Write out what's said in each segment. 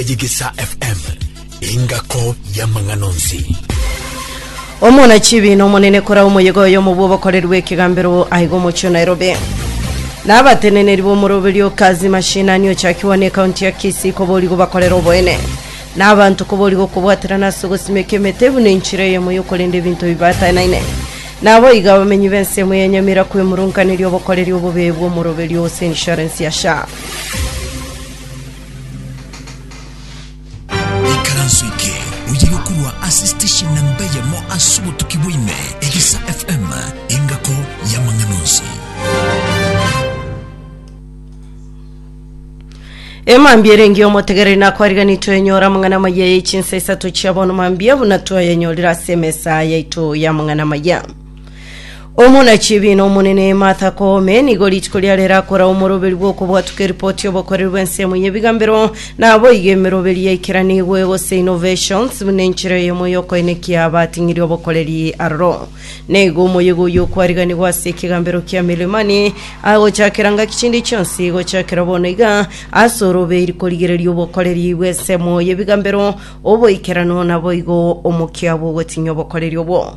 Ejigisa FM, engako y'amang'ana onsi. Omonachibiino omonene kora omoyega oyomo bw'obokoreri bw'ekegambero aiga omochie o Nairobi. Na abateneneri b'omoroberio o Kazi Mashinani ochakigwa ne kaunti ya Kisii koborigo bakorere oboene. Na abanto koborigo okobwaterana ase ogosimeka emete buna enchera eyemo y'okorenda ebinto bibaatanaine. Na abo iga abamenyi b'ensemo ya Nyamira kwemurunkaneria obokoreri obobe bw'omoroberio ase insurance ya SHA. Ikaranso eke oyire korwa ase station na mbeyemo ase obotuki bwaime egesa FM engako y'amang'ana onsi. Emambia erenge omotegereri nakwariganitwe enyora amang'ana amaya ye chinsa isato chia bono mambia buna twayanyorire ase emesa yaito y'amang'ana amaya Omonachibi na omonene Martha Koome nigo rituko riare rirakora omoroberi bw'okobwatuka eripoti y'obokoreri bw'ensemo y'ebigambero, naboigo emeroberi yaikeranigwe gose innovations buna enchera eyemo y'okoenekia abating'iri obokoreri aroro. Naigo omoyega oyio okwariganigwa ase ekegambero kia Milimani, agochakera ngaki chinde chionsi gochakera bono iga ase orobeiri korigereria obokoreri bw'ensemo y'ebigambero oboikeranu naboigo omokia bw'ogotinyia obokoreri obwo.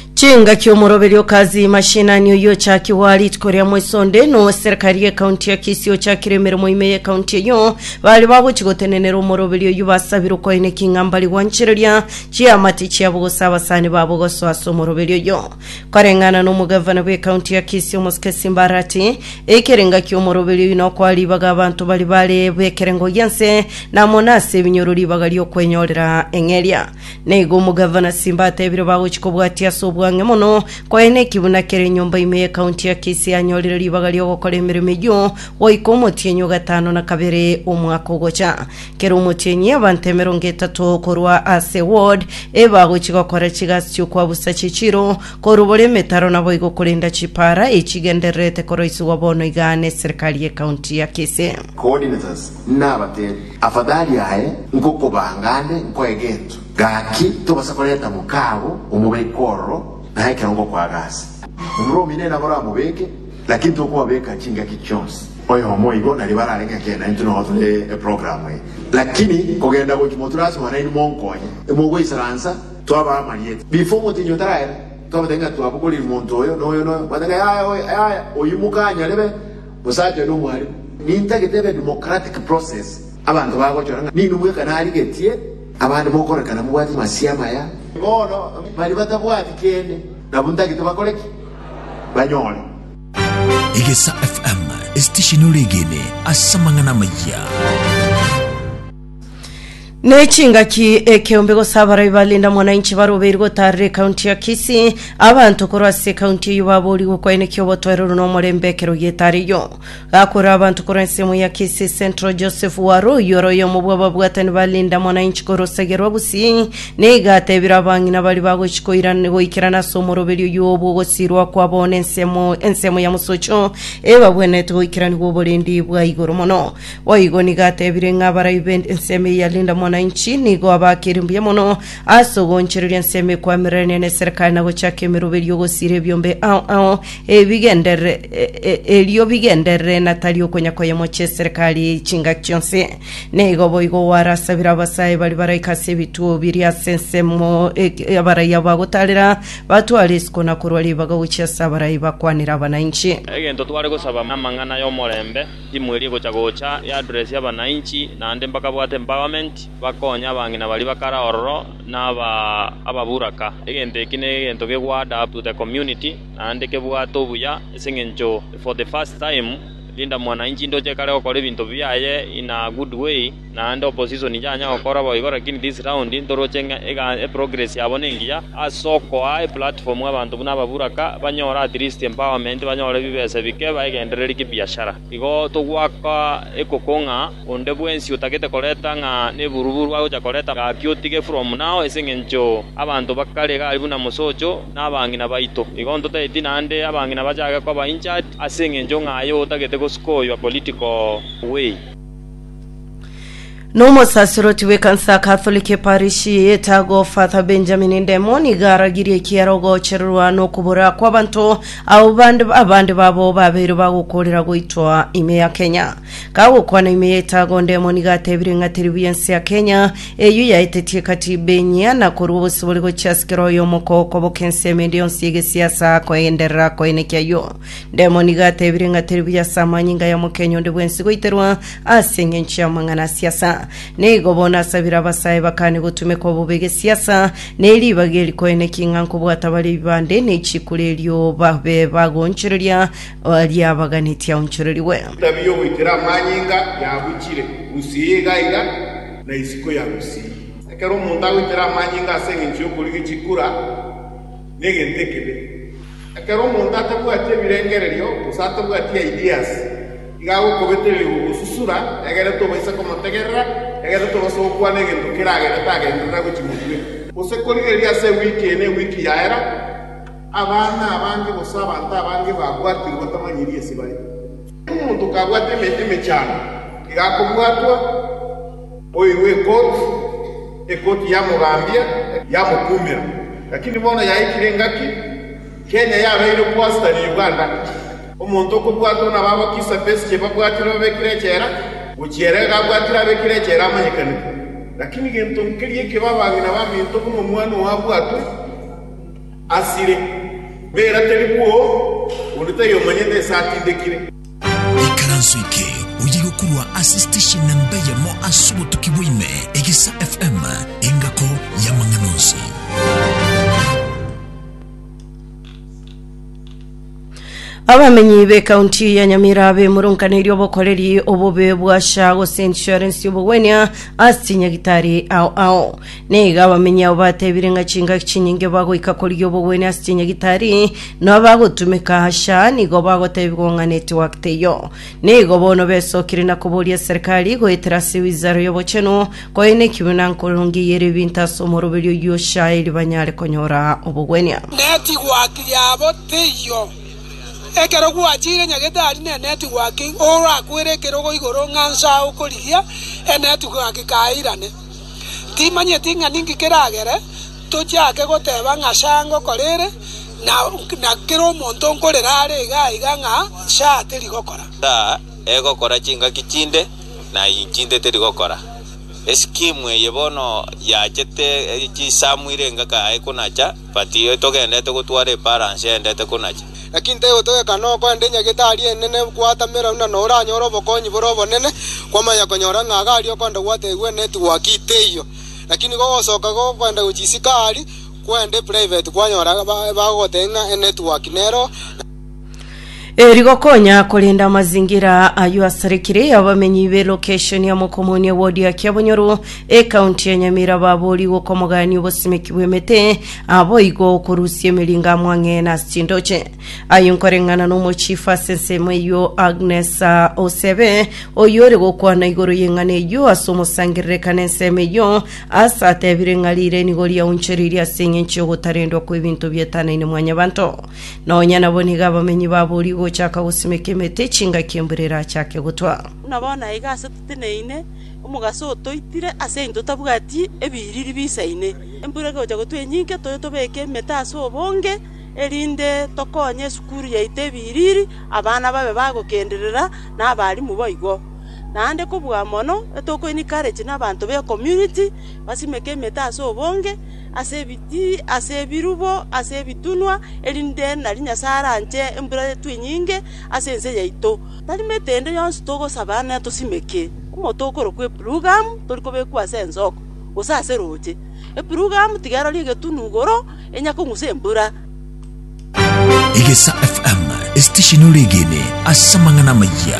Chingaki omoroberi o Kazi Mashinani oyio ochakigwa aa rituko ria mweso onde na owe serikari ye county ya Kisii ochakire emeremo ime ye county eyio bare bagochi gotenenera omoroberi oyio basabire okoine king'ambari gwanchereria chiamate chiabo gose abasani babo gosoa ase omoroberi oyio. Koreng'ana na omogavana bwe county ya Kisii omosike Simba Arati, ekere ngaki omoroberi oyio nokoa ribaga abanto bari bare bekerengo gianse na amo nase ebinyoro ribaga riokwenyorera eng'eria. Na igo omogavana Simba ateebire bagochi kobwatia ase obwang'e mono koyee nekiguna kere enyomba ime ye county ya Kisii anyorire ribaga riogokora emeremo eyio goika omotienyi o gatano na kabere omwaka ogocha. Kera omotienyi abanto emerongo etato korwa ase ward e bagochi gokora chigasi chiokwabusa chichiro, korubora emetaro naboigo korenda chipaara echigendererete koroisigwa bono igaa ne serikali ye county ya Kisii. Coordinators Nabateebie, Afadhali aye nkokobanga nde nkoe gento, gaki tobasa koreta mokaago omobeke ororo na ekero ngokoaga ase. Omorwa omino naboro amobeke, lakini tokobabeka chingaki chionsi. Oyomo igo na ribara arenge ngaki ena intwe nogo tore eprogramu eye. Lakini kogenda gochia moture ase Omonene nimonkonye. Mogoisaransa, twabaa amarieta. Before omotenyi otaraera, twabateebia ng'a twabogoreiri monto oyo na oyo na oyo. Bwate ng'a yaya oye, yaya oyio mokaanyorebe. Omosacha oyo nomwarimu. Nintagete ebe democratic process, abanto bagochora ng'a ninwe bweka narigetie, abande mokorekana mobwati masia amaya. Bono baria batabwati kende nabwo ntagete bakore ki? Banyore. Egesa FM, esitesheni ore egene ase amang'ana amayia. Ne chingaki ekeombe gose abarai ba Linda Mwananchi barobeirwe gotaarera ekaunti ya Kisii, abanto korwa ase ekaunti eyio baboorigwe kwaenekia obotoereru na omorembe ekero gietariyo. Gakorera abanto korwa ensemo ya Kisii Central Joseph Waro oyio ore oyomo bw'ababwatani ba Linda Mwananchi korosagia rwa Gusii nigo ateebire abang'ina baria bagochi koirana goikerana ase omoroberi oyio obw'ogosiirwa kwabo ne ensemo ensemo ya mosocho ebabwenerete goikeraniwa oborendi bwa igoro mono. Boigo nigo atebire ng'a abarai b'ensemo eyio ya Linda Mwananchi nigo abaakire mbuya mono ase ogoonchoreria ensemo ekwamirenire neserikari na gochaka emerobo erio ogosiira ebiombe ao ao ebigenderere e- e- erio bigenderere na tari okonya koyemochia eserikari chingaki chionsi. Nigo boigo gwarasabire abasae baria baraika ase ebituo biria ase ensemo e- e- abarai abo bagotaarera batware isiko na korwa ribaga gochia ase abarai bakwanere abananchi. Egento tware gosaba namang'ana y'omorembe. Timu eria egocha gocha e address ya abanainchi naende mbakabwate empowerment bakonye abang'ina baria bakare ororo na ababuraka. Egento eki ne egento ke go add up to the community naende kebwate obuya ase eng'encho for the first time Linda Mwananchi ndoche kare gokora ebinto biaye in a good way. naende opposition inchanya gokora boigo lakini this round ntoroche ng'a ega eprogress yabo nengiya ase okoa eplatform abanto buna ababuraka banyore at least empowerment banyore bibesa bike baegendererie kibiashara igo togwaka ekoko ng'a onde bwensi otagete koreta ng'a neburuburu agocha koreta gaki otige from now ase eng'encho abanto bakare iga aria buna mosocho na abang'ina baito igo ntotageti naende abang'ina bachake koba injured ase eng'encho ng'a aye otagete goskoywa political way. Nomosasiroti w'ekansa ya Katholiki eparishi y'etago Father Benjamin Ndemo nigo aragirie ekiara ogochererwa nokobora kw'abanto abo bande abande babo babeire bagokorera goitwa ime ya Kenya. Kagokwana ime y'etago Ndemo nigo atebire ng'a teri buya ense ya Kenya eyio yaetetie ekatiba enyia na korua obosibore gochia ase kera oyomo kogokoboka ensemo ende yonsi y'egesiasa koenderera koenekio ayio. Demoni iga atebire ng'a teri buya ase amanyinga ya mokenyu onde bwensi goiterwa ase engencho y'amang'ana a siasa. Na igo bono asabire abasae bakane gotumekwa bobe gesiasa, na eri ribaga eri koene ki ng'a nkobwata bare ebibande ne chikura erio babe bagoonchoreria aria abaganeti aonchorerigwe. Etabia y'ogoitera amanyinga yabuchire gusii iga iga, na isiko ya gusii. Ekero omonto agoitera amanyinga ase engencho y'okorigia chikura, negento ekebe. Ekero omonto atabwati ebirengererio, gose atabwati ideas, iga agokobetereria gogosusura, egere tobaisa komotegerera, egere tobaisa gokwana egento keragere tagenderera gochia motwe, gose korigereria ase ewiki eye na ewiki yaera, abana abange gose abanto abange babwatirwe batamanyiri ase bare. Omonto kabwate emete emechando iga akobwatwa, oirwe ekoti, ekoti yamogambia, yamokumera. Lakini bono yaikire engaki, Kenya yabeire okwasita ne Uganda. Omonto okobwatwa nabo abakisa Besigye babwatire babekire echela, gochia ere iga abwatire abekire echela amanyekanigwe. Lakini gento nkeria ekio b'abang'ina baminto buna omwana oo abwatwe. Asire, bera teri bwoo, onde taiyo omanyete ase atindekire. Ikaranso eke oyiga korwa ase station nemba eyemo ase obotuki bwa ime, Egesa FM, engako y'amang'ana onsi. Abamenyi b'ekaunti ya Nyamira bemurunkaneirie obokoreri obobe bwa SHA gose insurance y'obogwenia ase chinyagitari ao ao. Nigo abamenyi abo batebire ng'a chingaki chinyinge bagoika korigia obogwenia ase chinyagitari na abagotumeka SHA nigo bagotebigwa ng'a network teiyo. Nigo bono besokire na koboria serikali goetera ase wizara y'obochenu Koe neki buna nkorongeyeria ebinto ase omoroberio oyio Ishaeli banyare konyora obogwenia. Netigwaki yabo teiyo. Ekero gwacheire enyagetari ne netigwaki orakwere ekerogo igoro ng'a nsa okorigia enetigwaki kairane. Timanyeti ng'a ninki keragere tochake goteba ng'a sa ngokora ere na kera omonto nkorera are iga iga ng'a sa teri gokora. Nsa egokora chingaki chinde. na inki ntetiri gokora? Esikimu eye bono yachete chisamu ire engaka aye konacha but togendete gotwara eparansi yaendete konacha. Naki ntegotogeka noko ande nyagitari enene gwatamera buna noranyore obokonyi bore obonene, kwamanya konyora ng'a iga aria okwenda gwategigwe ne tigwaki teiyo. Naki nigo ogosoka gokwenda gochia isiko aria kwenda eprivate kwanyora bagogotebia ng'a enetwork nero, na. Eri gokonya korenda amazingira ayio asarikire abamenyi be location ya Mokomoni ya ward ya Kiabonyoru ekaunti ya Nyamira babori gokomogania obosimeki bw'emete aboigo okorusia emeringo amwang'e na chindoche aye nkoreng'ana n'omochifu ase ensemo eyio Agnes ah, Osebe oyio ore gokwana igoro y'eng'ana eyio ase omosangerereka n'ensemo eyio ase atebire ng'a rire nigo riaunchereirie ase eng'encho y'ogotarendwa kw'ebinto bietanaine mwanyabanto Nonya nabo nigo abamenyi baboorigwe gochaka gosimeka emete chingaki embura erachake gotwa. Buna bono aiga ase toteneine omogaso otoitire, ase engencho totabwati ebiriri biisaine. Embura egocha gotwa enyinke, toye tobeke emete ase obonge, erinde tokonye esukuru yaito ebiriri, abana babe bagokenderera, na abarimu boigo. Naende kobua mono, etokoini courage na abanto b'ecommunity basimeke emete ase obonge, ase ebirubo, ase ebitunwa, erinde nari Nyasae aranche embura yaitwe enyinge ase ense yaito. Tari metende yonsi togosaba netosimeke, omonto okorokwa Epurugamu tori kobekwa ase ensoko, gose ase roche. Epurugamu tiga erorie egetunu igoro, enya kong'usa embura. Egesa FM, estesheni ore egene ase amang'ana amayia.